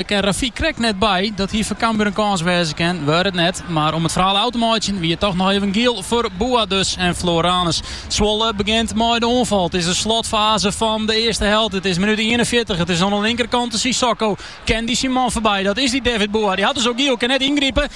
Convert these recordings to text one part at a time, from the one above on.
Der kin Rafik krekt net by. Dat hie foar Cambuur in kâns wêze kinnen, waard it net. Mar om it ferhaal ôf te meitsjen wie it toch noch even giel foar Boa dus en Floranus. Zwolle begjint mei de oanfal. It is de slotfaze fan de earste helte. It is minút ienenfjirtich. It is oan de linkerkante Sissoko. Kin dy syn man foarby? Dat is dy David Boa. Dy hat dus al giel, kin net yngripe.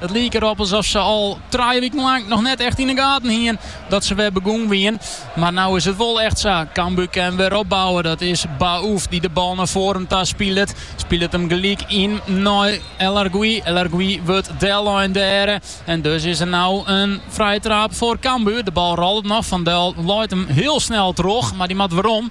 It liek derop alsof se al trije wiken lang noch net echt yn de gaten hiene dat se wer begûn wiene. Mar no is it wol echt sa. Cambuur kin wer opbouwe. Dat is Baouf dy't de bal nei foaren ta spilet. Spilet him gelyk yn nei El Arguioui. El Arguioui wurdt dellein dêre. En dus is der no in frije trap foar Cambuur. De bal rollet noch. Van Duijl leit him hiel snel troch, mar dy moat werom.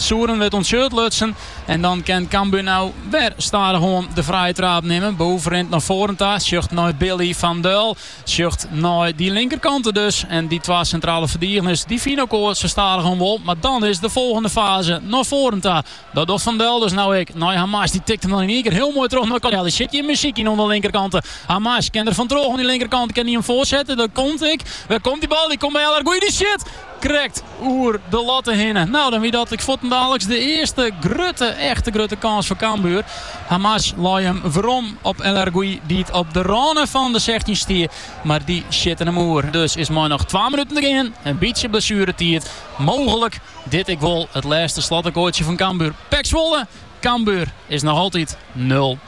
Souren wurdt oan 't shirt lutsen en dan kin Cambuur no wer stadichoan de frije trap nimme. Baouf rint nei foaren ta, sjocht nei Billy van Duijl, sjocht nei dy linkerkante dus. En dy twa sintrale ferdigeners dy fine elkoar sa stadichoan wol. Mar dan is de folgjende faze, nei foaren ta. Dat docht Van Duijl dus no ek. Nei Hamas, dy tikt him dan yn ien kear hiel moai troch nei Codelli. Sit hjir muzyk yn oan de linkerkante. Hamas kin der fan troch oan dy linkerkante, kin dy him foarsette. Dat komt ek. Wêr komt dy bal? Dy komt by El Arguioui, dy sjit! Krekt oer de latte hinne. No, dan wie dat ek fuortendaliks de earste grutte, echte grutte kâns foar Cambuur. Hamas lei him werom op El Arguioui, dy't op de râne fan de sechstjin stie, mar dy sjitte him oer. Dus is mei noch twa minuten te gean in bytsje blessueretiid mooglik dit ek wol it lêste slotakkoardsje fan Cambuur. PEC Zwolle, Cambuur is noch altyd nul.